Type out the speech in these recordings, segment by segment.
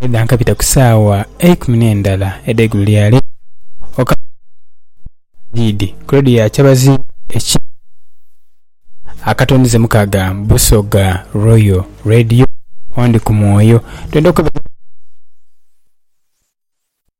Edha nkabita ku saawa eikumi n'endala edh'eigulo lya leero okuva Bwagiidhi ku leediyo ya kyabazinga ekiikiriza akatondezemuku ka ga Busoga Royal Radio, Ondi ku Mwoyo. Twidha okubaire...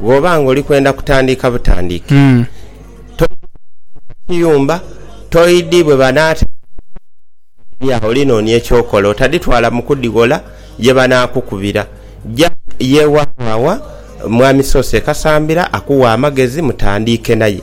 Bwoba nga oli kwenda kutandiika butandiike kiyumba toyidhi bwe banaata oli nonia ekyokola otadhitwala mu kudhighola ye banakukubira ja ye wawawa mwami Soose Kasambira akughe amagezi mutandiike naye.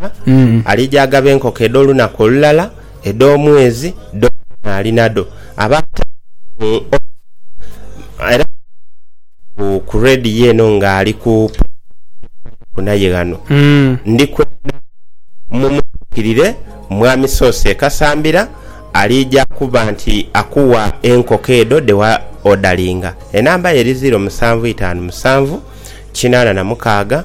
Katonda alija agaba enkoko edh'olunaku olulala, edh'omwezi, dhona ali nadho. Abaata mu Oxford era nga ali ku radiyo eno nga ali ku pulogulaamu y'okubairaku naye ghano, ndi kwenda mumutuukirire Mwami Soose e Kasambira, alija kuba nti akuwa enkoko edho dhe wa odalinga. Enamba ye eri ziiro musanvu itaanu musanvu kinaana na mukaaga